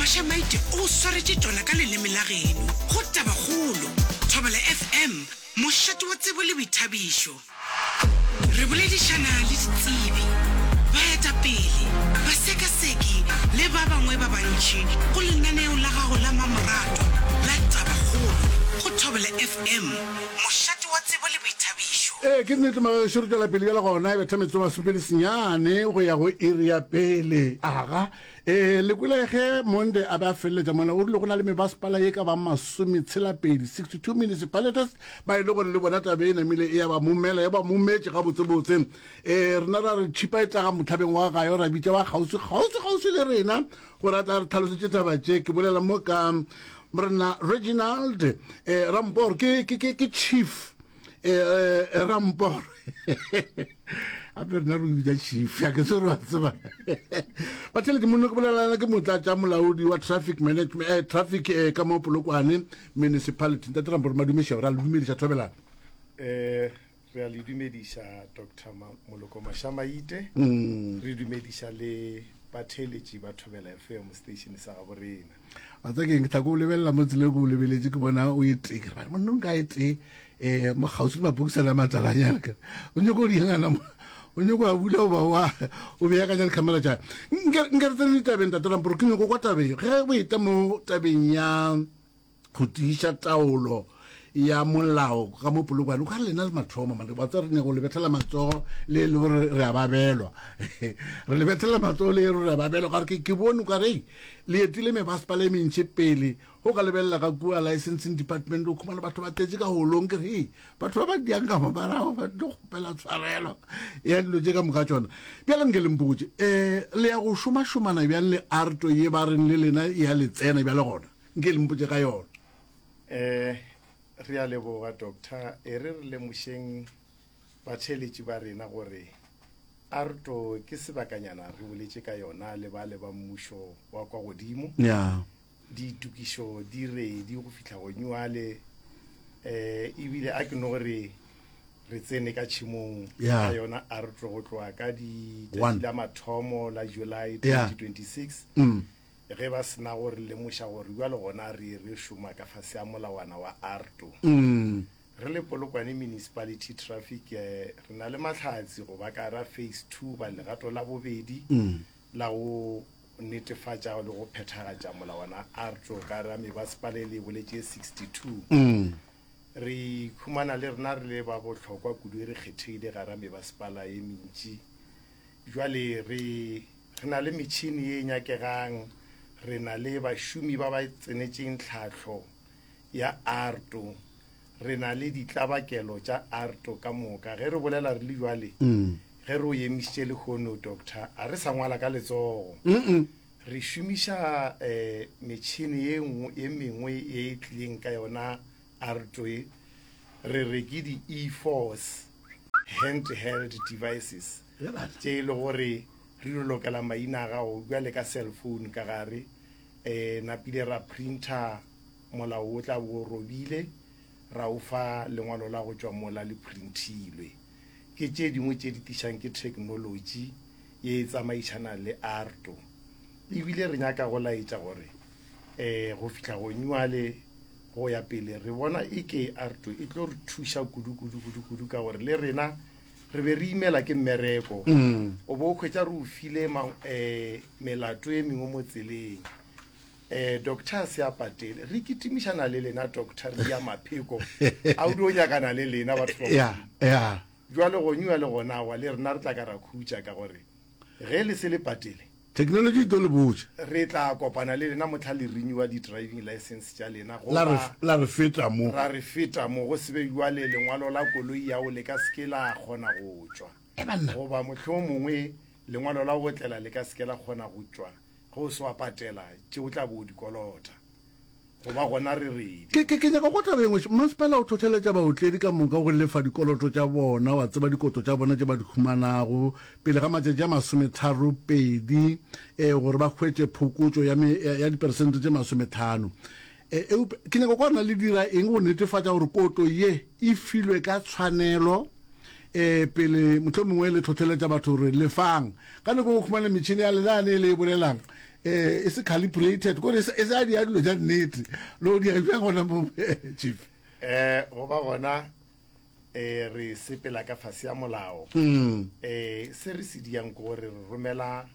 Bashamaite o swaretše tšona ka leleme la geno go Tabakgolo, Thobela FM, mošate wa tsebo le boithabišo. Re boledišana le ditsebi, baetapele, basekaseki le ba bangwe ba bantši go lenaneo la gago la mmamoratwa la Tabakgolo go Thobela FM, mošate wa tsebo le boithabišo. Ee, ke nnete, magešo, re tšwela pele bjale gona e betha metsotso masomepedi senyane go ya go iri ya pele. Aga, Ee, le kwele ge Monde a be a feleletša mola, o rile go na le mebasepala ye ka bang masometshela-pedi, 62 municipalities, ba e le gore le bona tabe e namile e ya ba momela, ya ba mometše gabotsebotse. Ee, rena ra re tšhipa e tlaga mohlabeng wa gayo, ra bitša wa kgauswi, kgauswi, kgauswi le rena, gore a tla re tlhalosetše taba tše. Ke bolela mo ka Mrna Reginald, ee, ra mpo gore ke, ke, ke, ke Chief. eh, eh, eh, ramporo gape rena re bitsa chief a ke se re wa tseba batlhele ke monne ke bolelana ke motla tša molaodi wa traffic management eh, traffic eh, ka mo polokwane municipality ntate ramporo madumešego ra le dumediša thobelana eh re a le dumediša dr moloko mashamaite mm. re dumediša le batheeletši ba thobela fm station sa gabo rena a tsa keng ke tlako o lebelela mo tsile go lebeletse ke bona o ete ke ba monna nka ete eh mo gausi ma bukisa la matsala nya ka o nyoko di ngana mo o nyoko a bula o ba wa o be ya ka jale camera ja nka nka re tsene tabeng ta tlolang bro ke nyoko kwa tabeng ge o eta mo tabeng ya go tiša taolo ya molao ka mo polokwane o ka lena le mathomo mane wa tswa re nyako lebethela matsogo le e le gore re a babelwa re lebethela matsogo le e re a babelwa ka gore ke bone ka re le etile me ba sepala e mentšhe pele go ka lebelela ka kua licensing department o khumana batho ba tletse ka holong ke re batho ba ba diang ka mabarago ba tlo gopela tshwarelo ya dilo tse ka moka tsona bjale nke le mpotse um eh, le ya go šomašomana bjang le arto ye ba reng le lena ya letsena bjale gona nke le mpotse ka yona um re a leboga doctor e re re lemošeng batheeletši ba rena gore arto ke sebakanyana re boletše ka yona le ba le ba mmušo wa kwa godimo yeah. ditokišo di redi go fihla go nyuale um eh, ebile a ke no gore re tsene ka tšhimong ya yona arto go tloa ka ditšatši la mathomo la july 2026 mm. ge ba se na go re lemoša gore bjalo gona re re šoma ka fase a molawana wa ARTO. Re le Polokwane Municipality Traffic re na le mahlatse go ba ka ra Phase Two ba legato la bobedi la go netefatša le go phethagatša molawana wa ARTO ka ra mebasepala e le e boletše e 62. Re ikhumana le rena re le ba bohlokwa kudu e re kgethegile ka ra mebasepala e mentši bjale re Re na le metšhini ye e nyakegang, re na le bašomi ba ba tsenetšeng tlhahlo ya arto, re na le ditlabakelo tša arto ka moka. Ge re bolela re le bjale, ge re o emišitše lehono, Doctor, a re sa ngwala ka letsogo. Re šomiša um metšhini ye nngwe, ye mengwe ye e tlileng ka yona arto ye, re re ke di-e-force, hand-held devices. tše e le gore re lo lokela maina a gago bja le ka cell phone ka gare um napile ra printer molao o tla bo robile ra o fa lengwalo la go tšwa mola le printilwe ke tše dingwe tše di tišang ke technology ye e tsamaišana le arto ebile re nyaka go laetša gore um go fitlha gonyuale go ya pele re bona e ke arto e tlo re thuša kudu-kudu-kudu-kudu ka gore le rena re be re imela ke mmereko o bo o kgwetsa re o file um melato e mengwe mo tseleng um doctor se a patele re kitimišana le lena doctor re ya mapheko a o di o nyakana le lena batho jale go nyewa le gona wa le rena re tla ka ra khutša ka gore ge le se le patele Theknolotši e tlo le botša. Re tla kopana le lena mohla le renewa di-driving license tša lena goba La re, la re feta mo. ra re feta mo. Go se be bjale lengwalo la koloi ya go le ka se ke la kgona go tšwa. Ge banna. Goba mohlomongwe lengwalo la go otlela le ka se ke la kgona go tšwa ge o se wa patela tše o tla bo o di kolota. go ba gona re re di. Ke, ke, ke nyaka go kwa taba ye nngwe. Mmasepala o hlohleletša baotledi ka moka go lefa dikoloto tša bona, wa tseba, dikoto tša bona tše ba di humanago, pele ga matšatši a masometharo pedi, e, gore ba hwetše phokotšo ya, me, ya, ya diperesente tše masometlhano. E, eupša ke nyaka go kwa na le dira eng go netefatša gore koto ye e filwe ka tshwanelo, e, pele mohlomongwe le hlohleletša batho gore lefang. Ka nako ye o humana metšhene ya lena yane e le e bolelang, eh, e se calibrated kore e sa dia dilo ja nnete lo dia bjang gona mo chief eh go ba gona eh re sepela ka fase ya molao hmm. eh se re se diang go re romela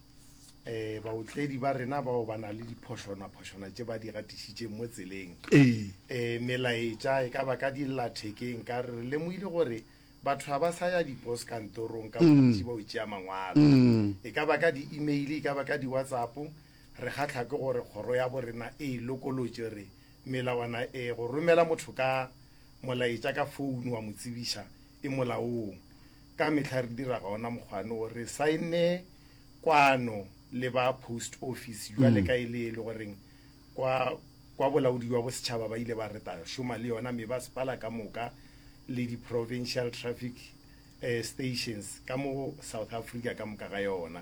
eh baotledi ba rena bao ba na le diphošona phošona tše ba di gatišitše mo tseleng eh melaetša e ka ba ka dillathekeng ka re lemoile gore Batho ga ba sa ya dipos kantorong ka bontši ba o tšea mangwalo, e ka ba ka di-email, e ka ba ka di-whatsapp. Re kgahlwa ke gore kgoro ya bo rena e e lokolotše re melawana e go romela motho ka molaetša ka founo wa mo tsebiša e molaong. Ka mehla re dira gona mokgwane wo, re saenne kwano le ba post office bjale ka e le e le goreng kwa, kwa bolaodi bja bosetšhaba ba ile ba reta šoma le yona me ba sepala ka moka le di-provincial traffic eh, stations ka mo south africa ka moka ga yona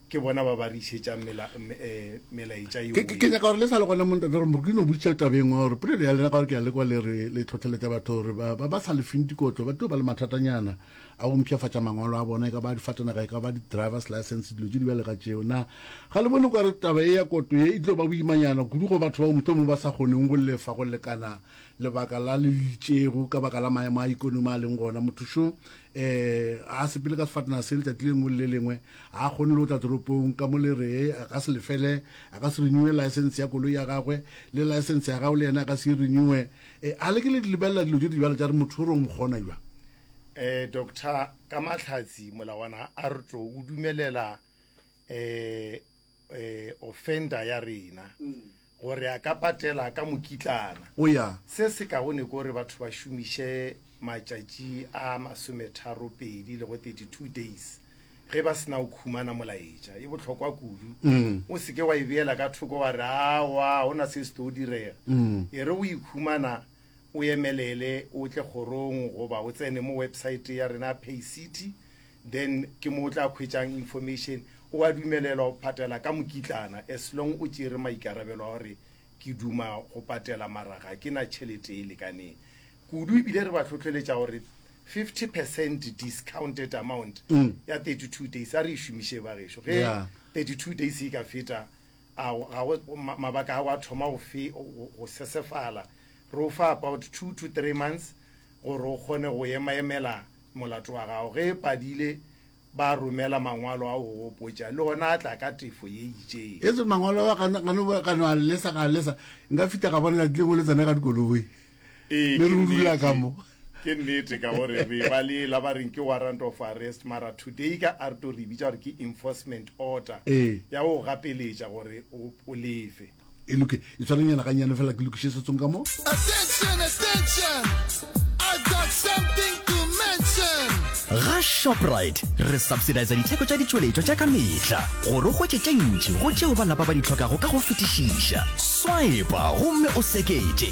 ke bona ba ba re išetšang mela, me- eh, melaetša ke ke- ke yeo nyaka gore le sa le gona montate gore mo ke no botša tabeng wa gore polelo ya lena ka gore ke ya lekwa le re le tlhotlheletša batho gore ba ba- ba sa lefeng dikotlo ba tlo ba le mathatanyana a go mpšhafatša mangwalo a bona e ka ba difatanaga e ka ba di-drivers license dilo tše di bjale ga tšeo na ga le bone kwa re taba e ya koto ye e tlo ba boimanyana kudu go batho bao mohlomong ba sa kgoneng go lefa go lekana lebaka la le itšego ka baka la maemo a ikonomi a leng gona motho šo um eh, a sepele ka sefatanaga se letšatši le lengwe le le lengwe ga a kgone le go tla toropong ka mo le ree a ka se lefele a ka se renewe license ya koloi ya gagwe le license ya gago le yena a ka se e renewe um eh, a le ke le di lebelela dilo tše di bjale tša re motho o rong kgona jwa eh doctor ka mahlatsi molawana a re tlo o dumelela eh eh offender ya rena gore a ka patela ka mokitlana o ya se se kaone ko re batho ba šomiše matšatši a masometharo pedi le go 32 days ge ba sena o khumana molaetša e bohlokwa kudu o seke wa e beela ka thoko wa re awa go na se se tlo o direga e re o ikhumana O emelele o tle kgorong goba o tsene mo website ya rena Paycity then ke mo o tla khwetšang information. O a dumelelwa go patela ka mokitlana as long o tšere maikarabelo a gore ke duma go patela mara ga ke na tšhelete e lekaneng kudu ebile re ba tlhotlheletša gore 50 percent discounted amount ya 32 days a re e šomiše bagešo ge 32 days e ka feta A ga go mabaka a go a thoma go fe go sesefala? Re o fa about two to three months gore o kgone go emaemela molato wa gago. Ge e padile ba romela mangwalo a go gopotša, le ona a tla ka tefo ye itšeng. Yesu, mangwalo a ga no ga no a lesa ga a lesa, nka fita ga bona lati lengwe le tsena ka dikoloi. Ee, le re rula ka mo ke nnete ka gore re ba le la ba reng ke warrant of arrest mara today ka a re to re bitsa gore ke enforcement order ee. ya go gapeletša gore o lefe e loke e tshwananyana ga nyane fela ke lokiše setsong ka mo attention attention i got something to mention ga shoprite re subsidisa ditheko tša ditšweletšwa tša ka mehla gore o hwetše tše ntši go tšeo ba lapa ba di tlhokago ka go fetišiša swipa gomme o seketše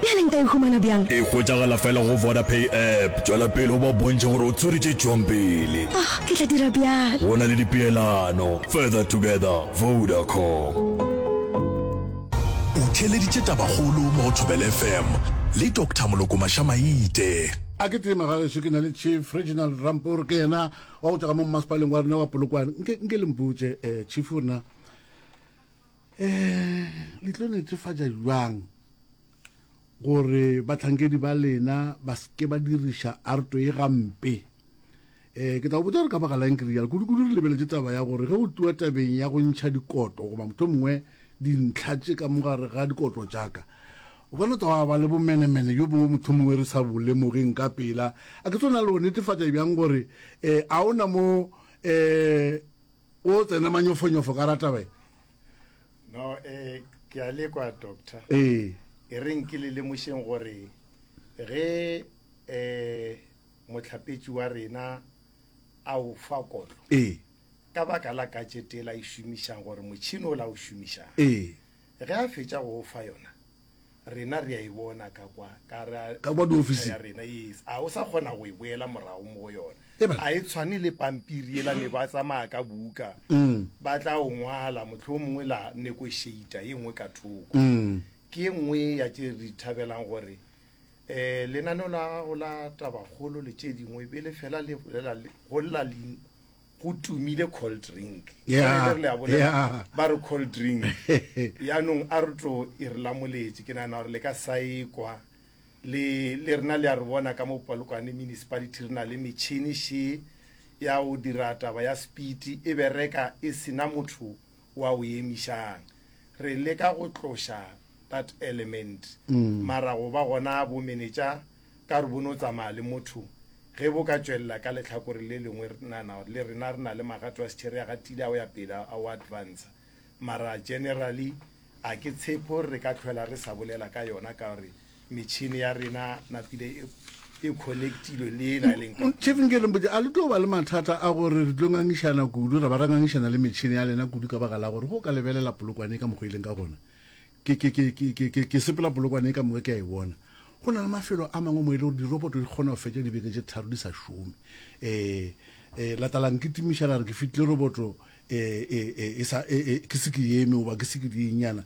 Bjale nka e humana bjang? E hwetšagala fela go Vodapay app. Tšwela pele o ba bontšhe gore o tswere tše tšwang pele. Oh, ke tla dira bjalo. Go na le dipeelano. Further together, Vodacom. O theeleditše tabakgolo mo go Thobela FM le Doctor Moloko Maša-Maite. A ke tee magageso ke na le chief Reginald Rampor ke yena wa go tšwa ka mo mmasepaleng wa rena wa Polokwane nke nke le mputše eh chief rena um le tlo netefatša bjang gore bahlankedi ba lena ba seke ba diriša arto ye gampe um ke tla go botsa gore ka baka lang ke rialo kudu-kudu re lebeletse taba ya gore ge go tliwa tabeng ya go ntšha dikoto goba motho mongwe dintlha tše ka mogare ga dikoto tšaka o ka no tsa ba le bomenemene jo bongwe motho mongwe re sa bolemogeng ka pela a ke tsona le go netefatša bjang gore um a o na mo um o tsene manyofonyofo ka rataba e no eh ke a le kwa doctor ee e re nke le lemošeng gore ge eh motlhapetši wa rena a o fa kotlo ee ka baka la katšete la e šomišang gore motšhini o la o šomišang ee ge a fetša go o fa yona rena re a e bona ka kwa ka ra Ka kwa diofising. ya rena yes a o sa kgona go e boela morago mo go yona E ba- a e tshwane le pampiri ela ne ba tsamaya ka buka ba tla o ngwala motlho o mongwe la negotiator ye nngwe ka thoko ke ye nngwe ya tše re thabelang gore um lenaneo la gago la tabakgolo le tše dingwe be le fela le bolela le- go lla lein- go tumile cold drink Yeah, Re le a bolela, yeah. ba re cold drink yaanong a re tlo e re lamoletše ke nagana gore le ka sa ekwa le le rena le a re bona ka mo polokwane municipality re na le metšhini še ya go dira taba ya speed e bereka e sena motho wa o emišang. Re leka go tloša that element, mara go ba gona bo menetša ka gore bo no tsamaya le motho. Ge bo ka tšwelela ka lehlakore le lengwe, re nana le rena re na le magato a setšhere, a gatile, a o ya pele, a o advancer. Mara generally a ke tshepe gore re ka tlhwela re sa bolela ka yona ka gore metšhini ya rena napile e, e connectilwe le e na e leng chief nke lempotse a le tlo ba le mathata a gore re tlo ngangišana kudu ra ba ra ngangišana le metšhini ya lena kudu ka baka la gore go ka lebelela polokwane e ka mokgwa e leng ka gona ke sepela polokwane e ka moka ke a e bona go na le mafelo a mangwe mo e le gore diroboto di kgona go fetša dibeke tše tharo di sa šome um um latalang ke timiša la re ke fitlile roboto e, e, e, e, sa, e, e, ke se ke eme goba ke se ke dienyana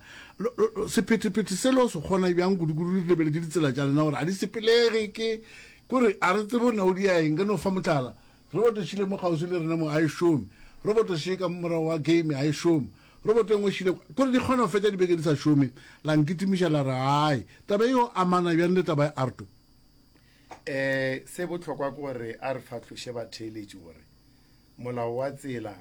sephetephete se lo se kgona bjang kudukudu di lebeletse ditsela tša lena gore a di sepelege ke kore a re tsebo nna o di ya eng ke no fa motlala roboto šile mo kgauswi le rena mo a e šome roboto še ka morago wa game a e šome roboto engwe šile kore di kgona go fetša dibeke di sa šome la nkitimiša la re ai taba eo amana bjang le taba ya arto um se botlhokwa ke gore a re fatlhoše batheeletši gore Molao wa tsela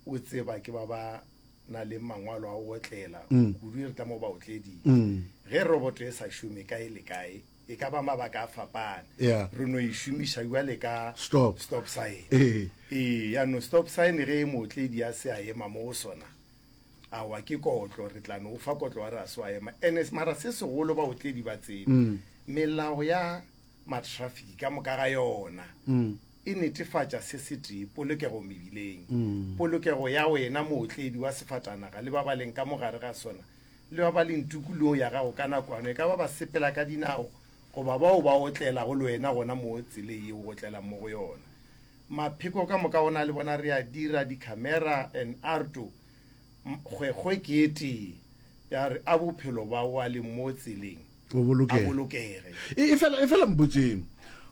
o tseba ke ba ba na le mangwalo a go otlela mm. kudu e re tlamo baotleding mm. ge roboto e sa šome kae le kae e ka ba mabaka a fapane yeah. re no e šomiša jale ka stop, stop sign ee ee yaanong stop sign ge e mootledi a se a ema mo go sona awa ke kotlo re tla no o fa kotlo wa re a se wa ema ene mara se segolo baotledi ba tsebe mm. melao ya matraffic ka moka ga yona mm. e netefatša se setee, polokego mebileng. Polokego ya wena, mootledi wa sefatanaga, le ba ba leng ka mo gare ga sona, le ba ba leng tukulong ya gago ka nakoano, e ka ba basepela ka dinao goba bao ba otlelago le wena gona moo tseleng yeo o otlelang mo go yona. Mapheko ka moka o na le bona, re a dira dikhamera en arto. Kgwekgwe ke e tee ya re a bophelo ba wa leng mo tseleng. o bolokege. E, e, e fela mpotseng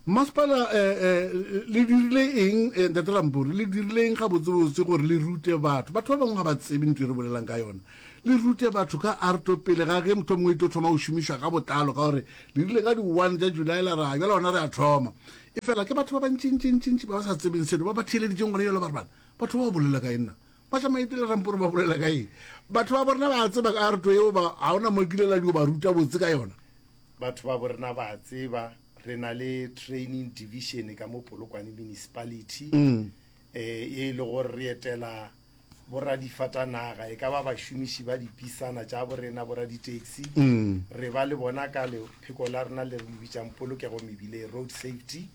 masepala um le dirile eng eh, ntate lampori le dirile eng gabotsebotse gore le rute batho batho ba bangwe ga ba tsebe ntho e re bolelang ka yona le rute batho ka arto pele ga ge motho mongwe e tlo thoma go šomišwa ka botlalo ka gore le rile ka di-one tša july la ra jala gona re a thoma e fela ke batho ba bantšintšintšintši ba ba sa tsebeng selo ba ba theeleditseng gona jalo ba re bana batho ba ba bolela ka enna Pasha Maite le Ramporo ba bolela ka eng? Batho ba borena ba tseba ka ruto yeo ba ga ona mo kile la dio ba ruta botse ka yona. Batho ba borena ba tseba re na le training division ka mo Polokwane municipality mm. eh, e le gore re etela boradifatanaga e ka ba bašomiši ba dipisana tša borena boraditaxi mm. re ba le bona ka lepheko la rena le re bitsang polokego mebile road safety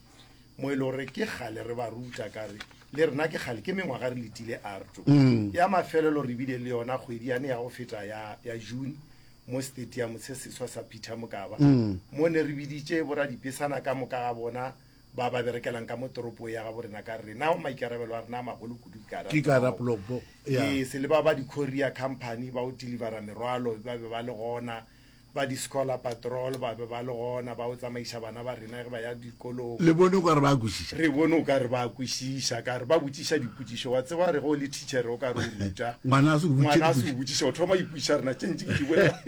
mo e le gore ke kgale re ba ruta ka re le rena ke kgale ke mengwaga re letile arto mm. ya mafelelo re bile le yona kgwedi yane ya go feta ya, ya june mo stadium se seswa sa peter mokaba mm. mo ne re biditše boradipesana ka moka ga bona ba ba berekelang ka mo toropo ya ga borena ka rena o maikarabelo a rena a magolo kudu ee se le ba ba di-coria company ba o delivera merwalo ba be ba le gona ba di-scholar patrol ba be ba le gona ba o tsamaiša bana ba rena ge ba ya dikolong le bone gore ba kwešiša re bone o ka re ba kwešiša ka re ba botšiša dipotšišo wa tseba re go le teachere o ka re o ruta ngwana a se o botšiša o thoma ipotšiša rena tše ntši ke di bolela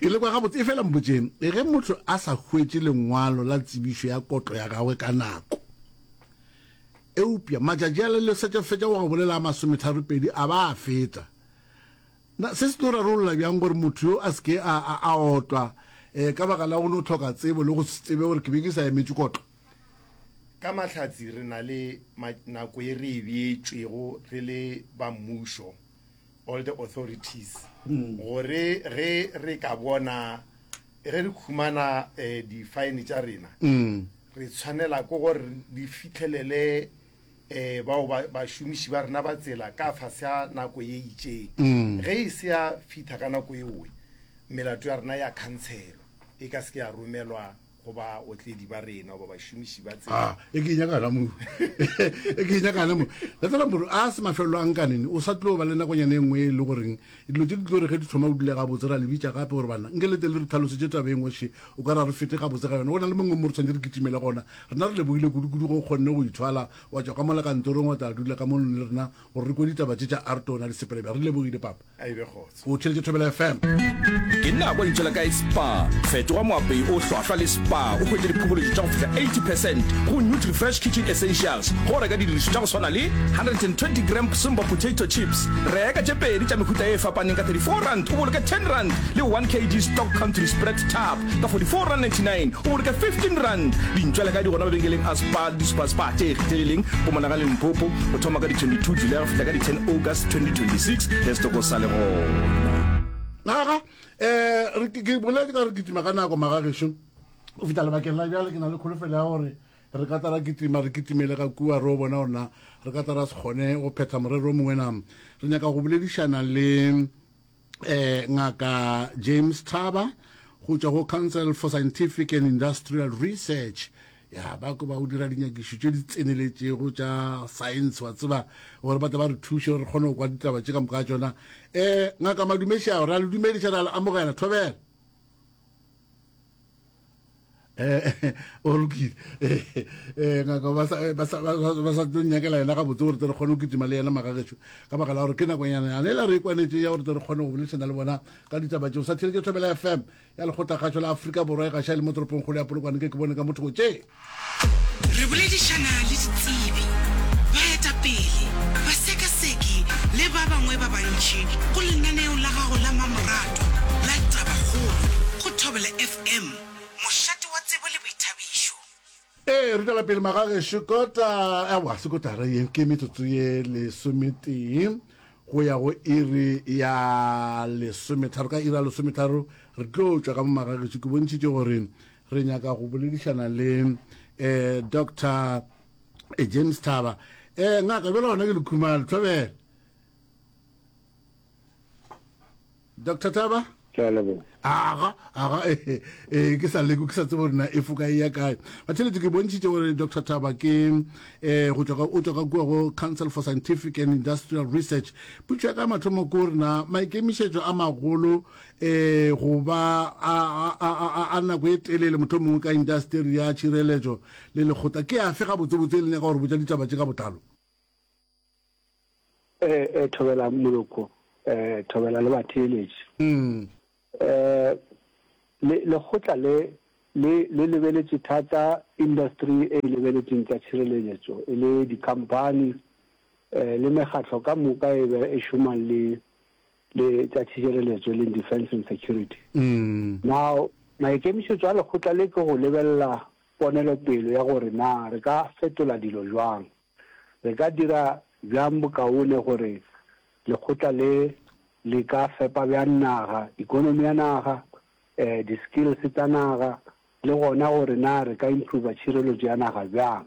ke le kwa gabotse e fela mpotseng ge motho a sa hwetše lengwalo la tsebišo ya kotlo ya gagwe ka nako eupša matšatši a le lesetšafetša wa go bolela a masometharo pedi a ba a feta Na se se tlo rarolla bjang gore motho yo a se ke a, a, a otlwa eh, ka baka la go no tlhoka tsebo le go se tsebe gore ke be ke sa emetše kotlo? Ka Mahlatse re na le ma, nako e re e beetšwego re le ba mmušo, all the authorities, gore ge re ka bona, ge re khumana eh, di-fine tša rena, re tshwanela ke gore re fihlelele um bao bašomiši ba rena ba tsela ka fase a nako ye itseng mm. ge e se ya fitha ka nako eoe melato ya rena ya khantshelwa e ka seke ya romelwa go ba otledi ba rena goba bašomiši ba tsela ah, e ke nyakana mo e ke nyakana mo letela moro a se mafelelo a nkanene o sa tlo ba le nakonyane e nngwe e le goreng Dilo tše di tlo re ge di thoma go dule gabotse, ra le bitša gape gore, Banna, nke le tle le re tlhalosetše taba e nngwe še, o ka re a re fete gabotse ga yona. Go na le mongwe mo re swanetše re kitimele gona. Rena re lebogile kudukudu ge o kgonne go ithwala wa tšwa ka mola kantorong wa tla dula ka mono le rena gore re kwe ditaba tše tša Arto na le Sepelebja. Re lebogile, Papa. A e be kgotso. O theeletše Thobela FM. Ke nna a kwa lentso la kae spa. Fetoga moapei o hlwahlwa le spa o hwetše diphobolotšo tša go fihla 80 percent go Nutri-Fresh Kitchen Essentials ge o reka didirišo tša go swana le 120 gram Simba potato chips, Reka tše pedi tša mehuta e fapaneng ka 34 rand o boloke 10 rand le 1 kg stock country spread tub ka 44 rand 99 o boloke 15 rand. Dintšwela ka di gona mabenkeleng a Spar le di-Super Spar tše kgethegileng Mpumalanga le Limpopo go thoma ka di 22 Julae go fihla ka di 10 August 2026 ge setoko sa le gona. Naga, eh, ke boletse ka gore ke kitima ka nako, magagešo. Go fihla lebakeng la bjale ke na le kholofelo ya gore Re ka tla ra kitima, re kitimele ka kua, re yo bona gore na re ka tla ra se kgone go phetha morero o mongwe na. Re nyaka go boledišana le um Ngaka James Thaba go tšwa go Council for Scientific and Industrial Research ya ba ko ba o dira dinyakišo tše di tseneletšego tša science wa tseba gore ba tle ba re thuše gore re kgone go kwa ditaba tše ka moka ga tšona um ngaka madumešao ra le dumediša ra le amogela thobela eh o lokile eh ngaka ba sa ba sa ba sa tlo nyakela yena gabotse gore tle re kgone go kitima le yena magagetšo ka baka la gore ke nakonyana yane la re e kwanetse ya gore tle re kgone go boledišana le bona ka ditaba tšeo sa theletše thobela fm ya lekgotlagatšo la aforika borwa e gaša e le mo toropong kgolo ya polokwane ke ke bone ka motho tše Re boledišana le ditsebi, baetapele, basekaseki le ba bangwe ba bantši go lenaneo la gago la mmamoratwa la Tabakgolo go Thobela FM, mošate wa tsebo le boithabišo. Ee, re tšwela pele magagešo. Kota, aowa, se kotara ye ke metsotso ye lesometee go ya go iri ya lesometharo. Ka iri ya lesometharo re tlo tšwa ka mo magagešo. Ke bontšhitše gore re nyaka go boledišana le um doctor eh, james thaba um ngaka bjela gona ke lekhumalo thobele doctor thaba aga aga ee eh, ke sa leko ke sa tsebo rena e foka e ya kae batheletse ke bontšhitše gore doctor thaba ke um o tswa ka kua go council for scientific and industrial research putšo ya ka mathomo ko rena maikemišetšo a magolo e go ba a, a, a, a, a nako e telele mohlomongwe ka indasteri ya tšhireletšo le lekgotla ke afe gabotsebotse e le nyaka gore botša ditaba tše ka botlalo e, e, thobela moloko e, thobela le batheeletši mm. e, le, lekgotla le le le lebeletše thata industry e e lebeletseng tša tšhireletšo e le dikhamphani um le mekgatlo ka moka e be e šomang le le tša tšhišireletšo e leng defence and security. Now, maikemišetšo a lekgotla le ke go lebelela ponelopele ya gore na re ka fetola dilo bjang, re ka dira bjang bokaone gore lekgotla le le ka fepa bjang naga, economy ya naga, um di-skills tsa naga, le gona gore na re ka improver tšhireletšo ya naga bjang.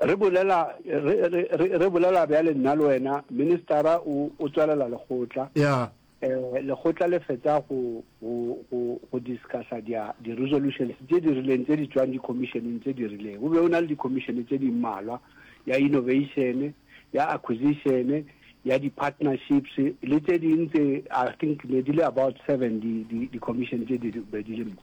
Re bolela, re, re, re, re bolela bjale nna le wena, ministara o, o tswalela lekgotla. Ya. Eh, lekgotla le fetsa go, go, go, go discussa dia, di-resolutions tše di rileng tše di tšwang dikhomišeneng tše di rileng. Go be go na le dikhomišene tše di mmalwa, ya innovation, ya acquisition, ya di-partnerships, le tše ding tše, I think ne di le about seven di, di, dikhomišene tše di be di le mo.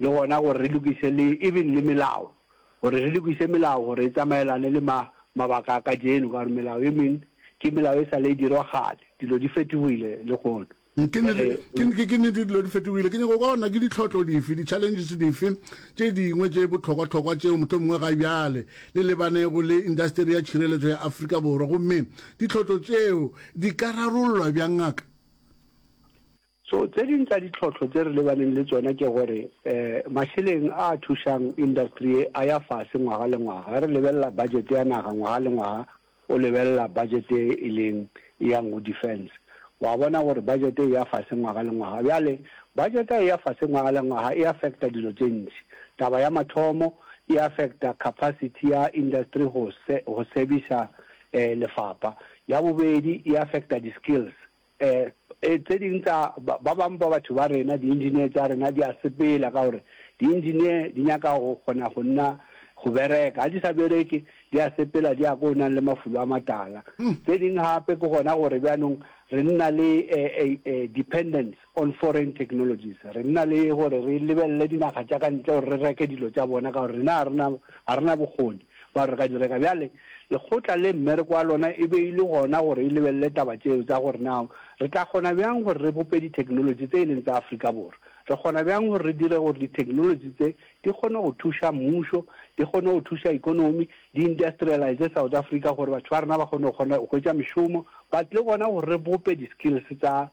le gona gore re lokiše le even le melao gore re lokiše melao gore e tsamaelane le ma mabaka a kajeno ka gore melao e meng ke melao e sale e dirwa kgale dilo di fetogile le gono Ke nnete, ke ke ke nnete dilo di fetogile. Ke nyaka go kwa gore na ke ditlhohlo dife, di-challenges dife tše dingwe tše bohlokwa-hlokwa tšeo mohlomongwe ga bjale le lebanego le indasteri ya tšhireletšo ya Afrika Borwa, gomme ditlhohlo tšeo di ka rarollwa bjang, Ngaka? So tse ding tsa ditlhohlo tse re lebaneng le tsona ke gore mašeleng a a thušang industry ye a ya fase ngwaga le ngwaga. Ge re lebelela budget ya naga ngwaga le ngwaga o lebelela budget ye e leng e yang go defence wa bona gore budget e ya fase ngwaga le ngwaga. Bjale budget ha e ya fase ngwaga le ngwaga e affecta dilo tše ntši. Taba ya mathomo e affecta capacity ya industry go servicer lefapha. Ya bobedi e affecta di-skills. E, e, tse ding tsa ba, ba bang ba batho ba rena, diengineer tsa rena di a sepela ka gore diengineer di nyaka go kgona go nna go bereka. Ga di sa bereke, di a sepela, di ya ko o nang le mafulo a matala. Hmm. Tse ding gape ke gona gore bjanong re nna le e, e, e, dependence on foreign technologies. Re nna le gore re lebelele dinaga tša ka ntle gore re reke dilo tša bona ka gore rena ga rena bokgoni. Ba re, Ga di reka. Bjale, lekgotla le, mmereko wa lona e be e le gona gore e lebelele taba tšeo tsa gore na re tla kgona bjang gore re bope ditheknolotši tse e leng tsa Afrika Borwa. Re kgona bjang gore re dire gore ditheknolotši tse di kgone go thuša mmušo, di kgone go thuša ekonomi, di industrialize South Africa gore batho ba rena ba kgone go kgona go hwetša mešomo, but le gona gore re bope di-skills tsa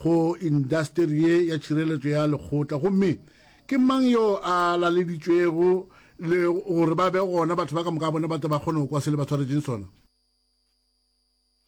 go indasteri ye ya tšhireletšo ya lekgotla, gomme ke mang yo a laleditšwego le gore ba be gona, batho ba ka moka bona ba tle ba kgone go kwa se le ba swaretšeng sona.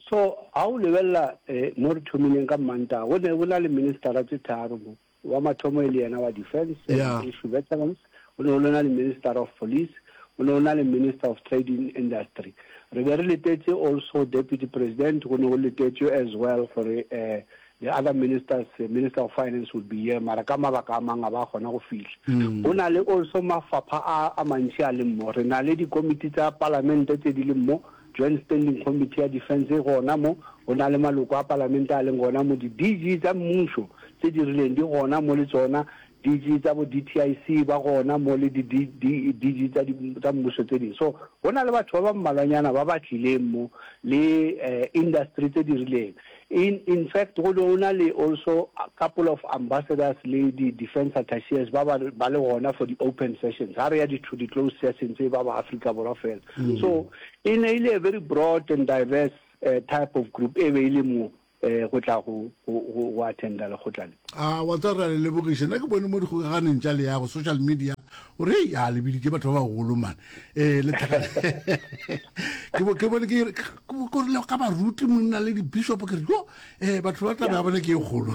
So, ga o lebelela mo re thomileng ka Mmantaga, go ne go na le ministara tše tharo mo. Wa mathomo e le yena wa Defence, Sehlompho Veterans, go ne go le na le Minister of Police, go ne go na le Minister of Trade in Industry. Re be re letetse also Deputy President, go ne go letetšwe as well gore eh, the other ministers eh, minister of finance would be here mara ka mabaka a mang a ba kgona go fihla mm. go na le also mafapha a, a mantši a leng mo re na le dikomiti tsa palamente tse di leng mo joint standing committee ya defense e gona mo go na le maloko a palamente a leng gona mo di-dg tsa mmušo tse di rileng di gona mo le tsona Digi tsa bo DTIC ba gona mo le di di di digi tsa di tsa mmušo tse ding. So go na le batho ba ba mmalwanyana ba ba tlileng mo le eh, industry tse di rileng. In in fact go no na le also a couple of ambassadors le di defense attaches ba ba ba le gona for di open sessions. Ha re ya di to di closed sessions e ba ba Africa Borwa fela. So e ne ile a very broad and diverse eh, type of group e be ile mo. eh, go tla go, go, go, go attenda lekgotla le. A wa tsa re a le lebogiše nna ke bone mo dikgokaganeng tša le yago social media o re hei a lebiditše batho ba bagolo mane ee eh, le ke bo ke bone ke korile ka baruti monna le dibishop ke re yo um batho ba taba ya bone ke e kgolo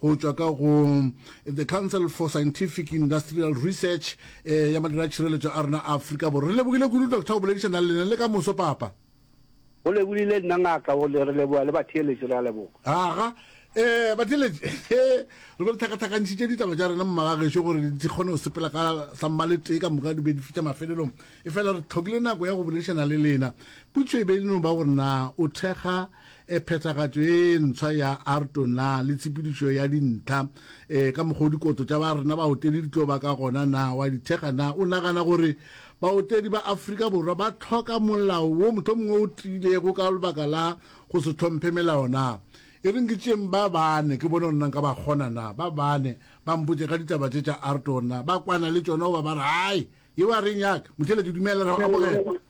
go tšwa ka go The Council for Scientific Industrial Research ya Madiratšhireletšo a rena a Afrika Borwa. Re lebogile kudu Doctor go boledišana le lena le ka moso Papa. Go lebogile nna ngaka go le re leboga le batheeletši re a leboga. Aga eh batheeletši he re be re thakathakantšhitše ditaba tša rena mmaga gešo gore di kgone go sepela ka sa mmale tee ka moka di be di fitša mafelelong e fela re tlhokile nako ya go boledišana le lena. Putšo e be e le no ba gore na o thekga e phethagatšo ye ntswa ya arto na le tshepedišo ya dintlha e ka mokgwa o dikoto tša ba rena baotedi di tlo ba ka gona na wa di thekga na o nagana gore baotedi ba afrika borwa ba tlhoka molao wo motlho mongwe o tiilego ka lebaka la go se tlhomphe melao na e reng ke tšeng ba bane ke bone gore nna nka ba kgona na ba bane ba mpotše ka ditaba tše tša arto gore na ba kwana le tšona goba ba re hai yeo a reng yaka motheletši dumela re go amogela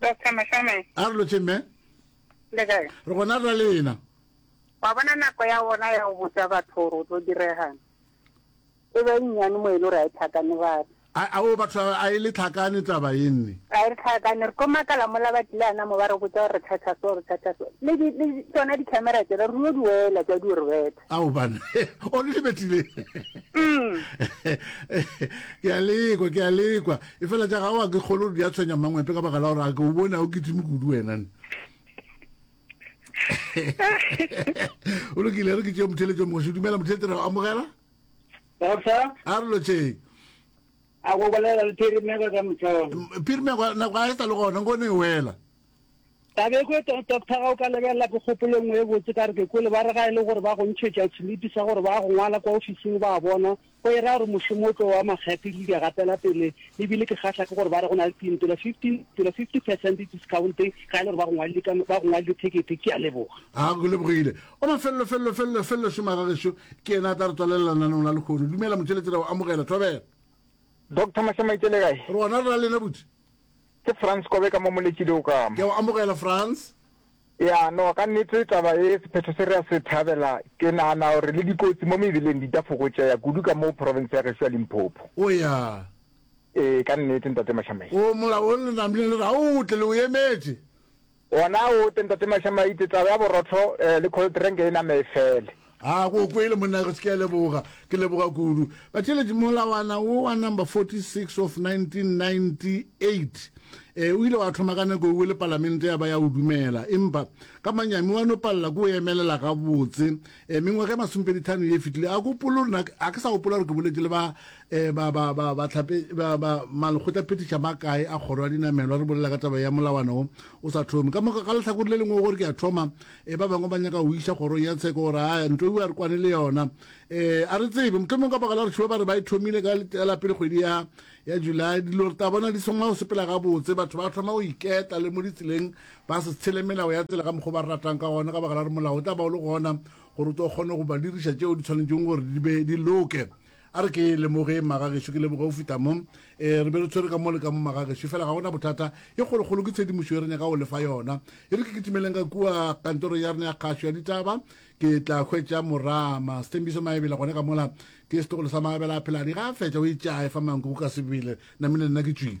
Doctor Mashame. A re lotše mme. Le kae? Re gona ra lena. Wa bona nako ya bona ya go botsa batho gore o tlo diregana. E be nnyane mo e le gore a e tlhakane batho. A o batho a e le tlhakane taba e nne. A e le tlhakane re ko makala mo la batlile ana mo ba re botsa gore re thatha so re thatha so. Le di le tsona di camera tsela re yo di wela tsa di re betha. A o bana. O le betlile. Mm. Ke a lekwa ke a lekwa. Efela tša gago ga ke kgolwe gore di a tshwenya Mangwepe ka baka la gore a ke o bone a o kitime kudu wena ne. O lokile re ke tšeo motheletšo mogoši. Dumela motheletše re go amogela. Doctor. A re lotšeng. A go bolela le Phirimego ka mohlolo. Phirimego nako a e sa le gona nko ne e wela. Tabekwe, Do, Doctor ga o ka lebelela ke kgopolo engwe e botse ka re ke kwele ba re ga e le gore ba go ntšhetša selipi sa gore ba go ngwala kwa ofising ba a bona go e raya gore mošomo o tlo wa makgethe dilo di a gatela pele e bile ke kgahla ke gore ba re go na le tintela 15 tela 50 percent discount ga e le gore ba go ngwalile ka ba go ngwalile thekete ke a leboga a go lebogile o mafelelo felelo felelo felelo šoma ga gešo ke ena a tla re tswalelela nanong la lekgono dumela motšheletšera o amogela thobela Doctor Mašamaitse le kae? Rona re na lena butse. Ke Frans Kobe ka mo Moletšile o ka. Ke a go amogela Frans. Ea no ka nnete taba e sephetho se re a se thabela. Ke nahana gore le dikotsi mo mebeleng di ta fokotšeha kudu ka mo province ya gešo ya Limpopo. O ya. Ee ka nnete Ntate Mashamela. O molaong le namile le re a o tle le o emetše. Wona o te Ntate Masha Maite, taba ya borotho le cold drink e name e fele. Haa go o kwele monna ge se ke a leboga ke leboga kudu batšeletši molawana wo wa number 46 of 1998 um o ile wa thoma ka nako ewe le palamente ya ba ya o dumela empa ka manyami wa no palela ko o emelela gabotse um mengwaga e masomepedithano ye fetile a kopolo rena a ke sa gopola gore ke boletše le ba E, ba, ba, ba, ba, tlhape, ba, ba malekgotla phetiša ba kae a kgoro ya dinamelwa re bolela ka taba ya molawana o o sa thome ka moka ka lehlakore le lengwe gore ke a thoma e ba bangwe ba nyaka go iša kgorong ya tsheko gore a nto ewa re kwane le yona e a re tsebe mothomong ka baka la gore šiwa ba re ba e thomile ka la pele kgwedi ya ya july dilo re ta bona di thoma go sepela gabotse batho ba thoma go iketa le mo ditseleng ba se tshele melao ya tsela ka mokgwa ba re ratang ka gona ka baka la gore molao o tla ba o le gona gore o tlo kgone go ba diriša tšeo di tshwanetseng gore di be di loke a re ke lemoge magagešo ke leboge o fita mo e re be re tshwere ka mo le ka mo magagešo fela ga gona bothata e kgolokgolo ke tshedimošo e re nyaka go lefa yona e re ke kitimeleng ka kua kantoro ya rena ya kgašo ya ditaba ke tla hwetša morama setembiso maebela gone ka mola ke setogolo sa maebela a pheladi ga a fetša o itšae fa manko go ka sebele namile nna ke tšwile